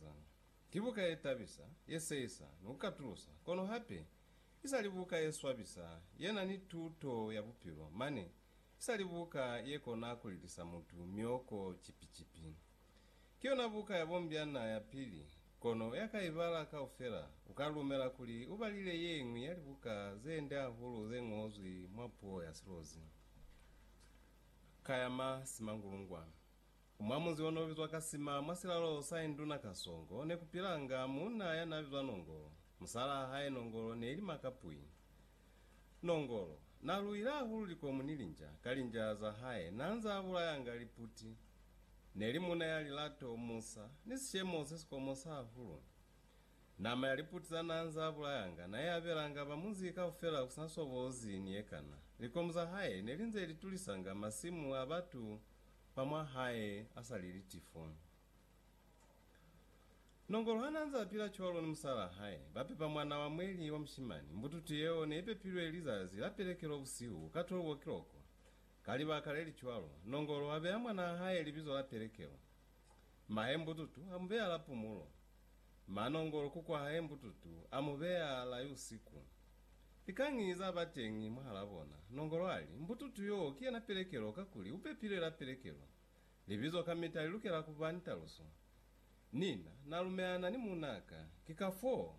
Zanga. Ki buka ye tabisa, ye seisa, ni ku katulusa, kono hape i sa li buka ye swabisa ye na ni tuto ya bupilo, mane i sa li buka ye kona ku lilisa mutu mioko kipi-kipi. Ki yona buka ya bombyana ya pili, kono ya ka i bala kaufela u ka lumela kuli u balile ye ñwi ya libuka ze nde hahulu ze ñozwi mwa puo ya Silozi ka ya ma simangulungwa. Mwa munzi ono bizwa Kasima mwa silalo sa Induna Kasongo ne ku pilanga muuna ya na bizwa Nongolo. Musalaa hae Nongolo ne ili Makapwi. Nongolo na luile hahulu likomu ni linja ka linjaa za hae na nzaa bulayanga liputi. Ne li muuna ya lilato, musa, ni sishemo se si komosa hahulu. Nama ya liputi za na nzaa bulayanga na i abelanga ba munzi kaufela ku sina sobozi ni ye kana. Likomu za hae ne li nze li tulisanga masimu a batu Ba mwa hae a sa li litifu. Nongolo ha n'a nze a pila cwalo ni musalaa hae, ba pepa mwan'a wa mweli wa mushimani. Mbututu yeo ne i pepilwe lizazi la pelekelo busihu ka 12 o'clock. Ka libaka le li cwalo, Nongolo a beya mwanaa hae libizo la pelekelo. Mahe mbututu a mu beya la pumulo. Manongolo ku kwahae mbututu, a mu beya lai usiku. Likañi za ba teñi mwahalaa bona? Nongolo ali, Mbututu yoo ki yena pelekelo, kakuli u pepilwe la pelekelo. Libizo kamita li lukela ku ba ni taluso. Nina, na lumelana ni muunaa ka, ki kafoo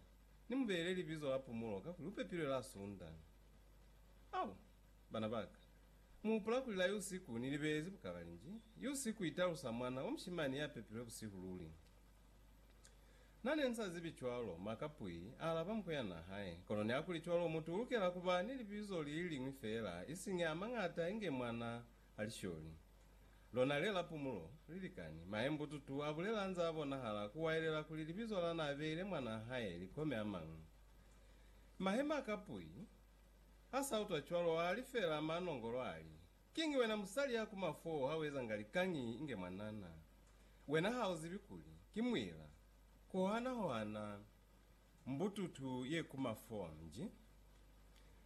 ni mu beile libizo la Pumulo kakuli u pepilwe la Sunda. Au! Bana ba ka, mu hupula kuli lai usiku ni libelezi bukalalinji? Yusiku i talusa mwana wa mushimani ya pepilwe busihu luli. Na ne nsa zibi cwalo, maka pwi, a alaba muku ya na hae. Kono niakuli cwalo, mutu ulukela kuba ni libizo li liñwi feela, isiñi a mañata inge mwana a lisholi. Lona le la pumulo, lilikani. Maembututu a bulela nza a bonahala ku waelela kuli libizo la na beile mwana a hae li kome a mañwi. Mahe maka pwi, a sa utwa cwalo, a li feela ma nongolo ali, Kiñi wena musali ya ku mafo ha u ezanga likañi inge mwanana? Wena ha u zibi kuli ki muila kuhana hohana mbututu ye ku mafo? Nji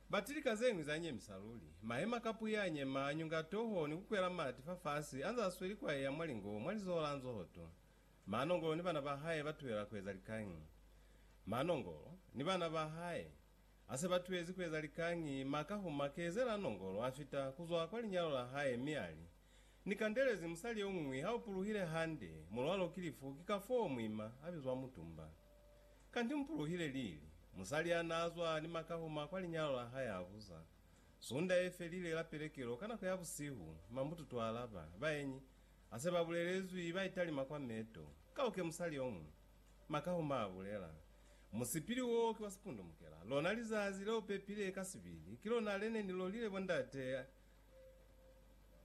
bati lika zeñwi za nyemisa luli. Mahema ka puya a nyema, a nyunga toho ni ku kwela mati fa fasi anze a sweli ku aiya mwalingo mwa lizoho la nzohoto. Maanongolo ni bana ba hae ba tuhela ku eza likañi? Maanongolo ni bana ba hae Ha se ba tuhezi ku eza likañi, Ma Kahuma kezela nongolo, a fita ku zwa kwa linyalo la hae mi a li, Ni kandelezi musali yo ñwi, ha u puluhile hande, mu lwal'o ki lifu, ki kafoo mu ima, a bizwa Mutumba. Kanti mu puluhile lili? Musali ya n'a zwa ni Ma Kahuma kwa linyalo la hae a buza. Sunda ye felile la pelekelo, ka nako ya busihu, Ma Mbututu a alaba, Baenyi, ha se ba bulelezwi, ba italima kwa meto. Ka u ke musali yo ñwi. Makauma a bulela, Musipili wo ki wa sipundumukela. Lona lizazi leo pepile ka sibili, ki lona le ne ni lolile bo ndate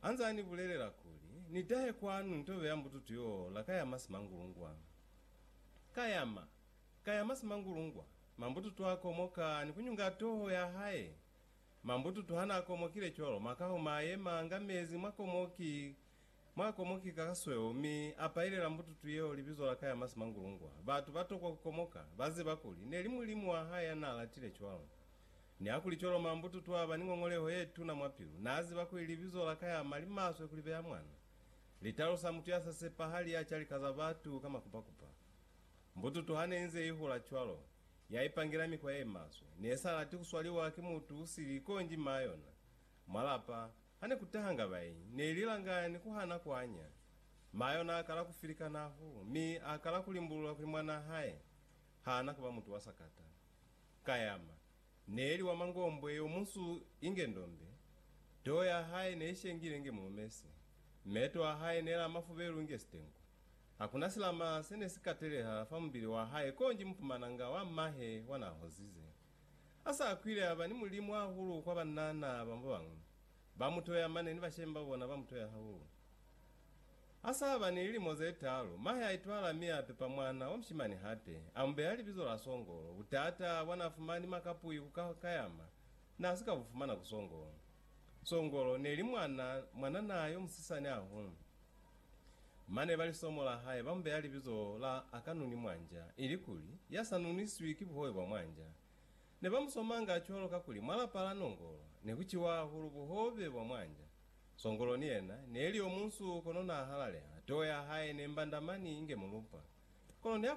a nze a ni bulelela kuli, Ni tahe kwanu ni to beya mbututu yo la ka ya masimangulungwa. Ka yama, ka ya masimangulungwa, mambututu a komoka ni ku nyunga toho ya hae. Mambututu ha na komokile cwalo, Makauma a yema nga mezi mwa komoki Mwa komoki ka kasweo, mi a pailela mbututu yeo libizo la ka ya Masimangulungwa. Batu ba tokwa ku komoka, ba ziba kuli, ne li Mulimu wa hae ya n'a latile cwalo. Ni ha kuli cwalo, mwa mbututu a ba ni ngongoleho ye tuna mwa pilu. N'a ziba kuli libizo la ka ya ma li maswe ku li beya mwana. Li talusa mutu ya sa sepahali ya ca lika za batu ka makupakupa. Mbututu ha ne inze i hula cwalo, ya ipangela mikwa ye maswe. Ne sa lati ku swaliwa ki mutu u sili, konji m'a yona, mwa lapa, Hane kutahanga bai, neili langani kuhana kuanya. Mayo naakala kufilika nahu, mi aakala kulimbulula kuli mwanaa hae haana kuba mutu wa sakata. Kayama, neeli wa mangombwe yomunsu inge ndombe, too ya hae neishengile inge mulumesi, meeto a hae neela amafubelu inge sitengu. Hakuna silama sene sikateleha fa mubili wa hae konji mupumananga wa mahe wa naahozize. A sa kwile a ba ni mulimu hahulu kwa banana ba babañwi. Ba mu toya mane ni bashemi ba bona ba mu toya hahulu. A sa ba ni lilimo ze taalu, mahe a itwala mi a pepa mwana wa mushimani hape, a mu beya libizo la Songolo. Butata bwa n'a fumani makapwi ku ka kayama n'a si ka bu fumana ku Songolo. Songolo ne li mwana, mwanana yo musisani hahulu. Mane ba lisomo la hae ba mu beya libizo la Akanuni Mwanja, ilikuli, Ya sa nuniswi ki buhobe bwa mwanja. Ne ba mu somanga cwalo kakuli mwa lapa la Nongolo ne ku ciwa hahulu buhobe bwa mwanja. Songolo ni yena ne li yo munsu kono n'a halaleha, too ya hae ne mbanda mani inge mulupa. Kono ne a